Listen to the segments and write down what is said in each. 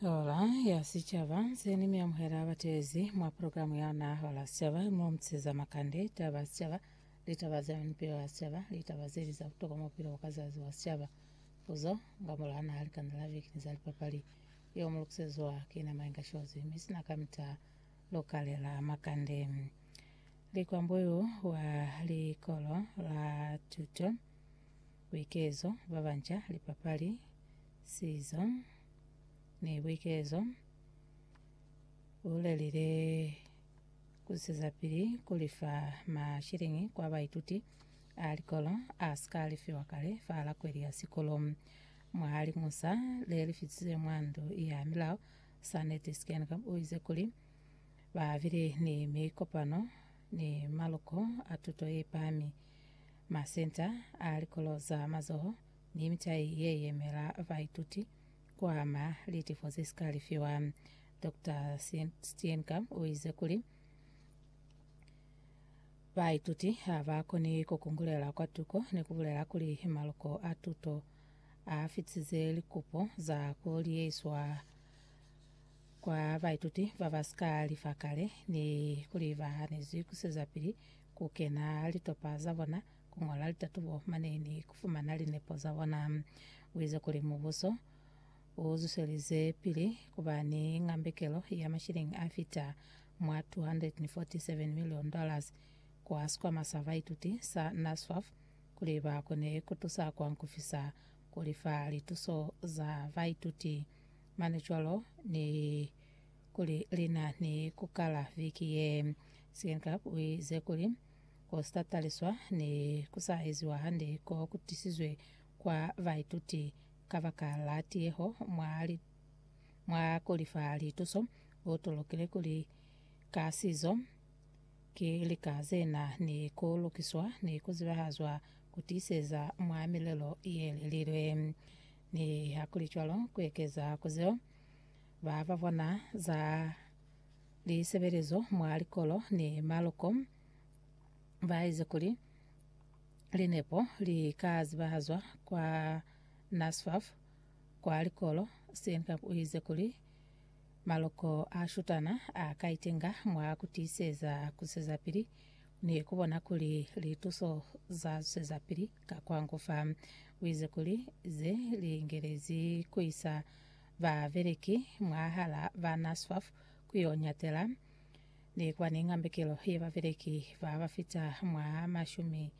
Hora ya Sicaba nzeni mi amuhela batezi mwa programu yana Hora ya Sicaba mo mtseza makande taba ya sicaba litaba za mipilo ya sicaba litaba zeli za butokwa mu bupilo ka zazi wa sicaba puzo nga mora na likanda la viki ni za lipapali yo mu lukiseziwa ki na mainga shozi mi sina ka mita lokale la makande likwambuyu wa likolo la tuto Buikezo bwa banca, lipapali, sizo, ni buikezo. U lelile ku sizapili ku lifa mashiliñi kwa baituti a likolo a si ka lifiwa kale fa lakweli ya sikolo. Mwa liñusa le li fitize mwa Ndu ya Milao, Sanet Steenkamp u ize kuli, Ba bile ni mikopano ni maluko a tuto ye pami, masenta a likolo za mazoho, ni mitai ye yemela baituti ku ama litifo ze si ka lifiwa. Doctor Steenkamp u ize kuli, Baituti ha ba koni ku kungulela kwa tuko ni ku bulela kuli maluko a tuto a fitisize likupo za ku liyeiswa Kwa baituti ba ba si ka lifa kale ni kuli ba hanezwi ku sizapili ku kena litopa za bona, ku ñola litatubo mane ni ku fumana linepo za bona, u ize kuli mubuso u zwiselize pili ku ba ni ngambekelo ya mashilingi a fita mwa $247 million kwa sikwama sa baituti sa NSFAF kuli ba kone ku tusa kwa ku fisa ku lifa lituso za baituti. mane cwalo ni kuli lina ni kukala viki ye Second Club u ize kuli ku sa taliswa ni ku sa eziwa hande ko ku tisizwe kwa baituti kabaka la tiyeho mwa li, mwa kuli fa lituso u tulukile kuli ka sizo ki lika ze na ni ku lukiswa ni ku zibahazwa ku tiiseza mwa milelo ye lelilwe. Nihakulicwalo, ku ekeza ku zeo ba ba bona za lisebelezo mwa likolo ni maloko ba ize kuli linepo li ka zibahazwa kwa NSFAS kwa likolo, Steenkamp u ize kuli, Maloko a shutana a ka itenga mwa ku tiiseza ku zwezapili ni ku bona kuli lituso za zwezapili. Ka kwa ngu fa, uize kuli ze li ngelezi ku isa ba beleki mwahala ba NASFAF ku yo nyatela ni kwa ni ngambekelo ye ba beleki ba ba fita mwa mashumi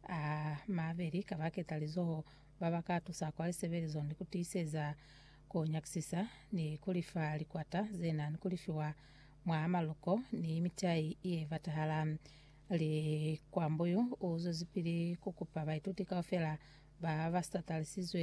a mabeli ka ba ketalizoho ba ba ka tusa kwa lisebelizo ni ku tiiseza ku nyakisisa ni ku lifa likwata ze na ni ku lifiwa mwa maluko ni mitai ye batahala Likwambuyu u zwezipili ku kupa baituti kaufela ba ba sa talisizwe